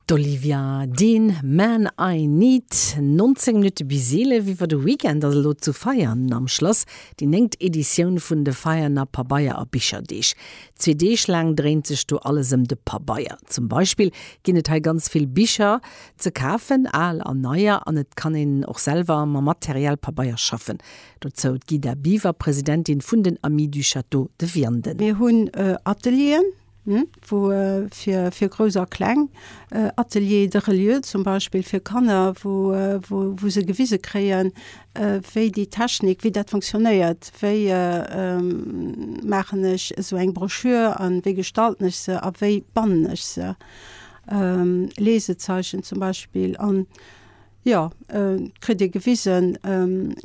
D'Olivia Dean, Man I Need. 19 Minutte bis 11, iwwer de Weekend ass elo zu Veianen am Schlass déi néngt Editioun vun de Veianer Pabeier a Bicherdeeg. Zwee Deeg laang dréint sech do alles ëm de Pabeier. Zum Beispill ginn et hei ganz vill Bicher ze kafen, al a neier, an et kann een och selwer mam Material Pabeier schaffen. Dozou d'Guida Biver, Presidentin vun den Amis du Château de Vianden. Mir hunn Atelieren, wou fir fir Grouss a Kleng, Ateliers de reliure zum Beispill fir Kanner, wou wou wou se gewise kréien, wéi déi Technik, wéi dat funktionéiert, wéi maachen ech esou eng Broschür a wéi gestalten ech se a wéi bannen ech se, Lesezeichen zum Beispill an. Jo, et kritt ee gewisen,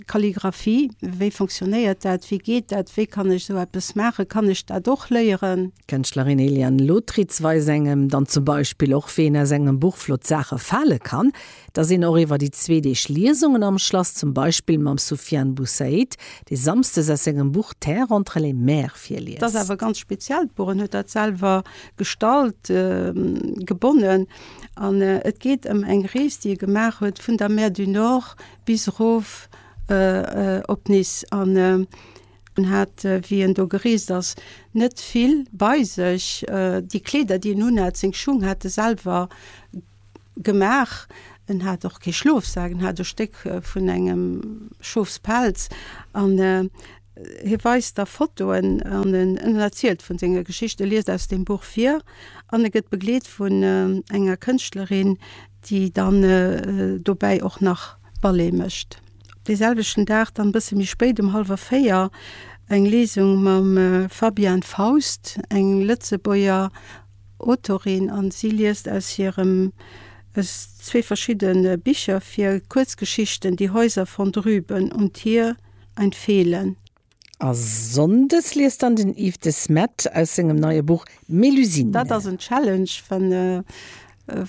Kalligraphie, wéi funktionéiert dat, wéi geet dat, wéi kann ech esou eppes maachen, kann ech dat och léieren? D'Kënschtlerin Eliane Lotritz weist engem dann zum Beispill och, wéi een aus engem Buch flott Saache fale kann, dass een och iwwer déi zwee Deeg Liesungen am Schlass zum Beispill mam Soufiane Boussaid, dee samsdes aus sengem Buch Terre entre les mers virliest. Dass awer ganz speziell, d'Buch, en huet dat selwer gestallt, gebonnen. An et geet ëm eng Rees, déi e gemaach huet vun der Mer du Nord bis erof op Nice. An en hat, wéi en do gereest ass, net vill bei sech. Déi Kleeder, déi en unhat, seng Schung hat e selwer gemaach. En hat och kee Schlofsak, en hat e Stéck vun engem Schofspelz. An. Hie weist da Fotoen an en erzielt vun senger Geschicht, e liest aus dem Buch vir an e gëtt begleet vun enger Kënschtlerin, déi dann dobäi och nach Ballet mécht. Dee selwechten Dag dann e bësse méi spéit um hallwer véier eng Lesung mam Fabian Faust, eng Lëtzebuerger Autorin an si liest aus hirem, aus zwee verschidde Bicher vir, Kuerzgeschichten Die Häuser von drüben und hier. ein Fehlen. A Sonndes liest dann den Yves de Smet aus sengem neie Buch Mélusine. Dat ass en Challenge, wann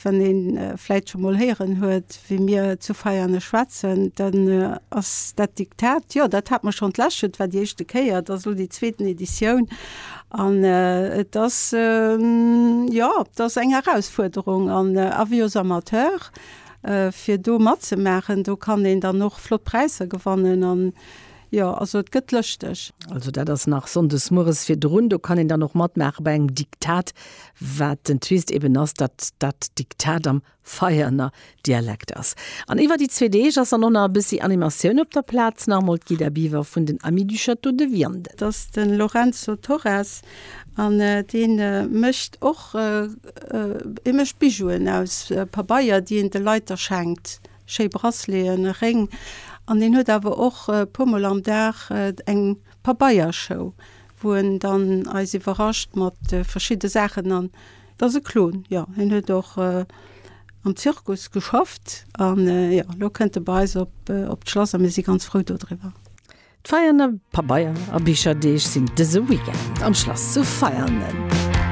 wann een vläit scho mol héieren huet, wéi mir zu Veiane schwätzen, dann ass dat Diktat, jo, dat hat mer schonn, d'Läschent war déi éischte Kéier, et ass elo déi zweeten Editioun an et ass, jo, et ass eng Erausfuerderung an Avis aux amateurs. fir do matzemaachen. Do kann een dann och flott Präisser gewannen an jo, also et gëtt lëschteg. Also dat ass nach sonndes mueres virdrun. Do kann een dann och matmaache bei engem Diktat, wat den Twist eben ass, datt dat Diktat am Veianer Dialekt ass. An iwwer déi zwee Deeg ass dann och nach e bëssi Animatioun op der Plaz, nach emol d'Guida Biver vun den Amis du Château de Vianden. Datt de Lorenzo Torres An dee mécht och, e mécht Bijouen aus Pabeier, déi een de Leit da schenkt, schéi Braceleten a Réng. An deen huet awer och e puer mol am Dag eng Pabeiershow, wou en dann eis iwwerrascht mat verschidde Saachen. An et ass e Clown, jo. Hien huet och am Zirkus geschafft. An jo, elo kënnt e bei eis op d'Schlass a mir si ganz frou dodriwwer. D'Veianer Pabeier a Bicherdeeg sinn dëse Weekend am Schlass zu Veianen.